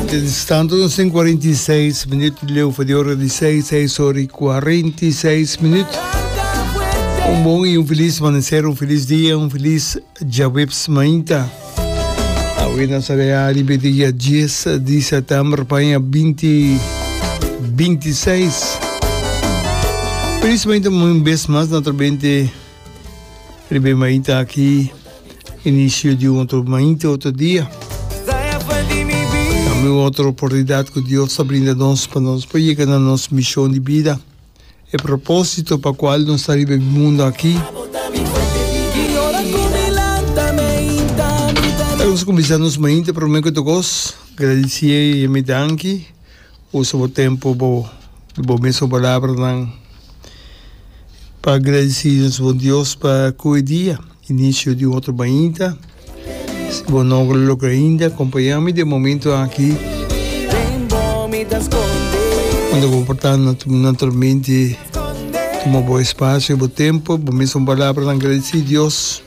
Ten stando nos en 46 minuut di leu voor de ora di 6, 6 ora y 46 minuut. Un bon y un feliz amanecer, un feliz dia, un feliz jaweps mainta. Awe na sarea ribe dia 10 di september paña 20 26. Feliz mainta un bes mas na trobente. Primer maita aki, inicio di un otro maita, otro dia. Tambe un otro oportunidad cu Dios ta brinda nos pa nos por yega na nos mision di bida, e proposito pa cual nos ta riba e mundo aki. Nos cuminsa nos maita, promer cu todo cos, gradici e yam'e danki. Usa bo tempu bo di bo mes ku palabranan pa gradisí nos Bon Dios pa ku e dia, inisio di un otro mainta. Si bo no lo logra ainda, kompañá mi den e momentu aki unda ku bo por ta naturalmente tuma bo espasio i bo tempu, bo mes ku palabranan gradisí Dios.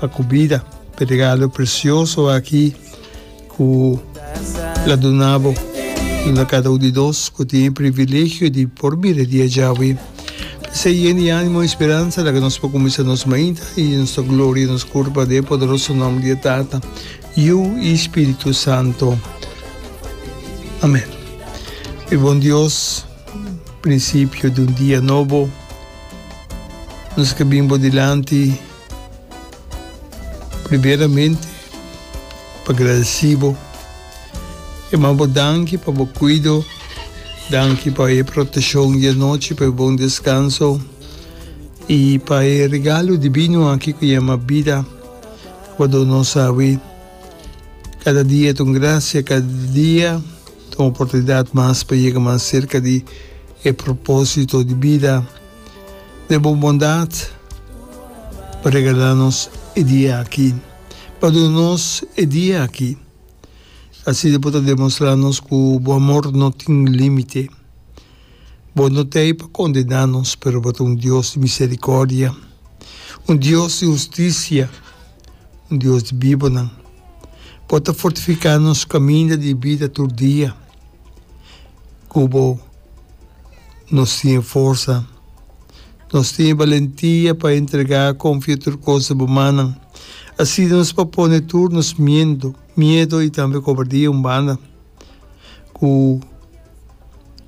pa cu bida pa e regalo precioso aki cu lo duna bo. Duna cada un di nos cu tin e privilegio di por mira e dia djawe. P'esey yen di animo y speransa laga nos por cuminsa nos mainta y nos ta gloria nos curpa den e poderoso nomber di e Tata, Yu y Spiritu Santo. Amen. Mi bon Dios, principio di un dia nobo. Nos ka bin bo dilanti primeramente pa gradeci bo i ma bo danki pa bo cuido, danki pa e proteccion di anochi, pa e bon descanso i pa e regalo divino aki cu yama bida cu bo dona nos awe. Cada dia ta un gracia, cada dia. ta un oportunidat mas pa yega mas serka di e propósito di bida. Den bo bondat, bo regala nos e dia aki. Bo a duna nos e dia aki. Asina bo ta demostrá nos ku bo amor no tin límite. Bo no ta ei pa kondená nos, pero bo ta un Dios di miserikòrdia, un Dios di hustisia. un Dios di bibonan, bo ta fortifiká nos kaminda di bida tur dia ku bo. Nos tin forsa, nos tin balentia pa entregá konfia tur kos di bo mannan. Asina nos por pone tur nos miendo, miedo i tambe kobardia un banda, ku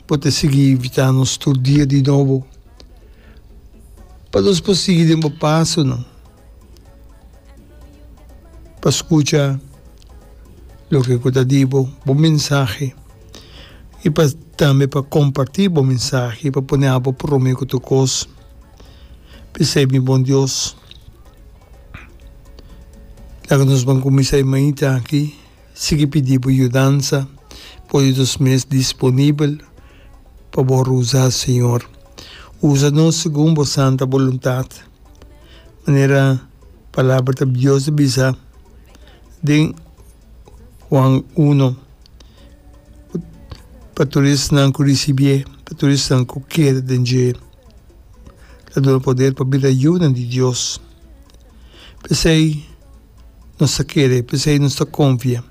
bo ta sigui invitá nos tur dia di nobo pa nos por sigui den bo pasonan. pa skucha loke ku ta di bo bo mensahe i pa tambe pa kompartí bo mensahe pa pone abo promé ku tur kos p'esei mi bon Dios laga nos ban kuminsá e mainta aki sigui pidi bo yudansa pone nos mes disponibel pa bo usá señor usa nos segun bo santa boluntat. manera palabra ta Dios ta bisa den Juan uno, pa tur esnan ku risibié, pa tur esnan ku keda den dje, ta duna poder pa bira yunan di Dios. P'esei nos ta kere, p'esei nos ta konfia,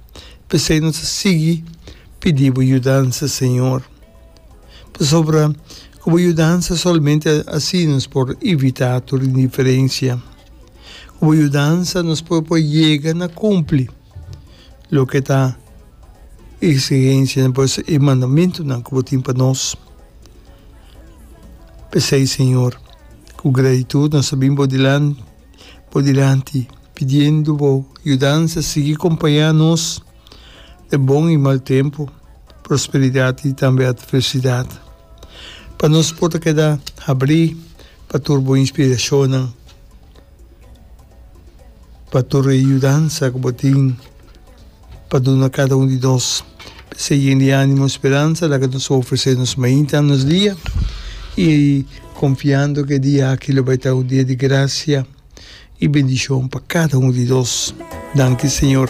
p'esei nos ta sigui pidibu yudansa, Señor. Pasobra ku bo yudansa solamente así nos por evitá tur indiferensia. Ku bo yudansa nos por por yega na kumpli loke ta e eksigensianan, pues e mandamentunan ku bo tin pa nos. P'esei, Señor, ku gratitut nos ta bin bo dilanti pidiendo bo yudansa sigui kompañá nos. e bon i mal tempu, prosperidat i tambe atversidat. Pa nos por ta keda habrí pa tur bo inspirashonnan, pa tur e yudansa ku bo tin pa duna kada un di nos esei yen di ánimo i speransa laga nos a ofresé nos mainta nos dia, i konfiando ku e dia aki lo bai ta un dia di grasia i bendishon pa kada un di nos. Danki Señor.